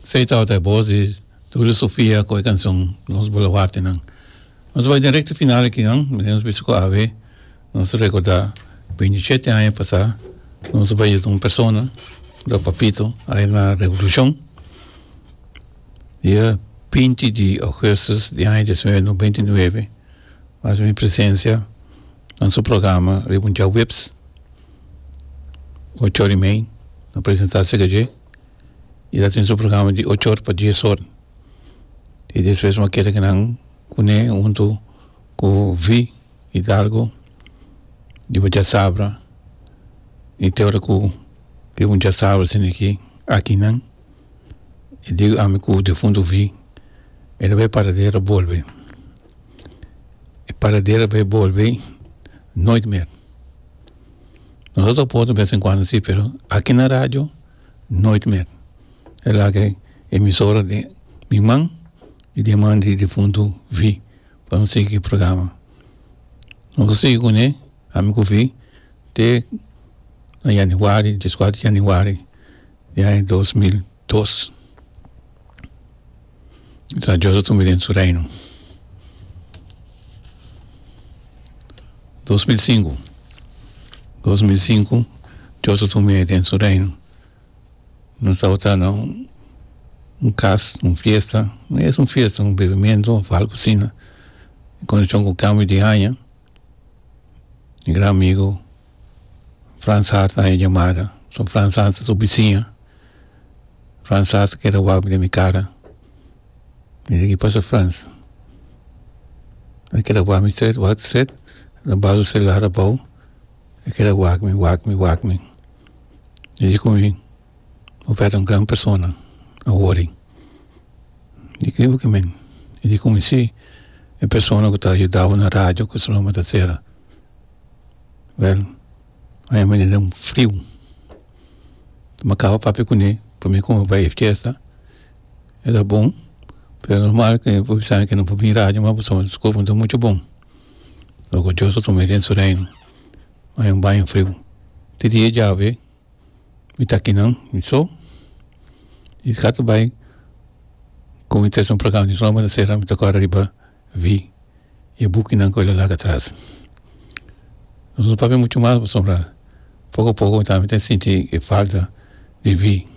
Sei tabata e bos di Tulio Sofia cu e cancion Los Boloartenan. Nos bai den recta final akinan. Mester nos bisa cu awe nos a recorda binti shete aña pasa nos a bai yudar un persona, Broer Papito, aya na Revolucion. Dia binti di Augustus di aña dies nueve nobenta i nueve, mi presencia na su programa riba un djawips. ochor y mei lo presenta seca dje y lo tin su programa di ochor pa dies or y despues lo kere nan cune hunto cu V. Hidalgo y bo dja sabra y te ora cu e bo dja sabra sindi aki akinan e dico ami cu difunto V. e ta bay paradero a bolbe e paradero a bay bolbe nooit mer. Nosotros ta por de vez en cuando si pero aki na radio nooit meer e laga e emisora den mi man y den man di difuntu V pa no sigui programa nos ta sigui cune ami cu V te na januari dies kuater januari di aña dos mil. Dos, ta diosa tumbe den su reino. Dos mil sinku, dos mil sinku diosa tumbe den su reino no tabata no un kas un fiesta no es un fiesta un bebimento of algu asina condition cu cambio di aña mi gran amigo Frans Hart a haña yamada so Frans Hart ta subi siña Frans Hart a keda wak den mi kara mi yagi pasa Frans a keda wak mi stret wak stret lo ba su selular abou a keda wak mi wak mi wak mi mi yesi komo mi mi pèrdè un gran persona awor dikibikamen mi yesi komo mi si e persona ku ta yudabonan radio ku su nomber ta Sera. Well ora mi manda un friu mi kaba papia kuné pa mi kome pa e fiesta e ta bon pero normal ke por bisa ke no por bin radio me por tuma disculpa no ta muchu bon lo ke dios a tuma den su reino ora mi bai friu te dia e diabe. Mi ta aki nan, mi so. I sa ta bai kon mi ta hasi un plakao di roma, ta sera, mi ta kore riba vi e bukinan ku el a laga atras. Mi no papia muchu mas pasobra poko a poko mi ta sinti e falta di vi.